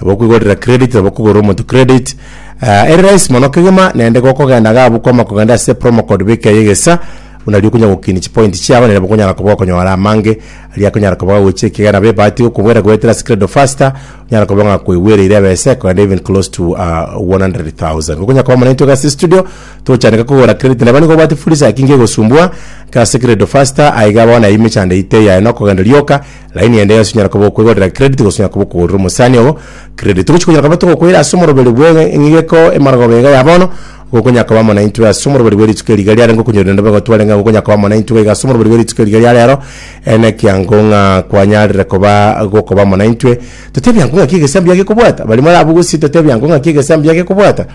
Nabo okwigorera credit nabo okogorera omonto credit uh, ere rahisi mono kegima naende gokogenda iga abwo kwama kogenda ase promo code beka eye egesa buna riria okonyara gokinia chipoint chiago naende nabo okonyara koba okonyora amange aria akonyara koba gagochia ekiagera nabo ebahati gokobwera goetera ase credit of faster onyara koba ng'a koigwereire ebese kogenda even close to uh, 100,000 gokonyara koba monaito iga ase studio togochandeka kogora credit neba nigo obwate furisa eki ngegosumbua iga ase credit of faster aiga bono ime chanda ite yaye nokogenda rioka Line ende yonsi inyara koba okwegorera credit gose inyara koba okogorera omosani obo credit. Togochi konyara koba togokoira ase omoroberi bw'e- eng'igeko emarogoro iga ya bono, nigo okonyara koba muna intwe ase omoroberi bwe rituko eri iga riarenge okonyorire nabo egotware ng'a nigo okonyara koba muna intwe iga ase omoroberi bwe rituko eri iga ria rero, ere nekiango ng'a kwanyarire koba gokoba muna intwe. Totebi ango ng'aki egesamu bia gekobwata, barimo are abwo gose totebi ango ng'aki egesamu bia gekobwata,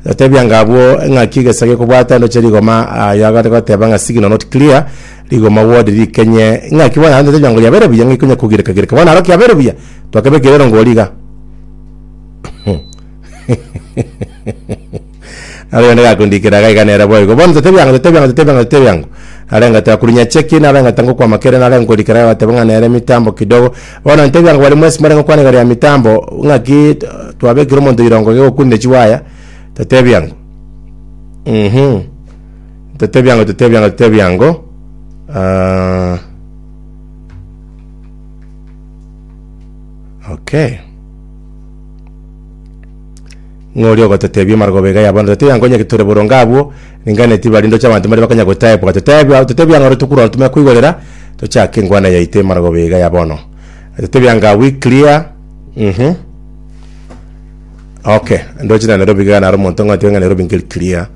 totebi anga abwo ng'aki egesa gekobwata ndoche rigoma ah, yagare goteba ng'a signal not clear, Rigoma wodi rikenye ng'aki bono aantete riongo riabere buya ng'ai konya kogireka gireka bono aro kiabere buya twakebekire erongo oria iga Abe onde gakondikera iga iga nere boigo bono totebi ang'o totebi ang'o totebi ang'o totebi ang'o arenge takurunya cheki nabe ng'a tangokwama kere narenge korikera iga bateba ng'a nere mitambo kidogo bono ntebi ang'o bari mwesi mare gokwana igoro ya mitambo ng'aki twabekire omonto rirongo iga okunde chiwaya totebi ang'o mhm. Totebe ebiango, totebe ebiango, totebe ebiango. Ah, okay. Ng'ori ogototebia emarogobao iga yabono, totebe ebiango onye tore boronge abwo, ringana tiba rinde oche abanto mbare bakanya gotaebwa. Totebe ebia- totebe ebiango ore tokura tumanye koigorera, tochake engwana yaito emarogobao iga ya bono. Totebe ebiango are we clear? Mhm. Okay, ndoche na Nairobi iga naro omonto ng'a oteba ng'a Nairobi nkeri clear.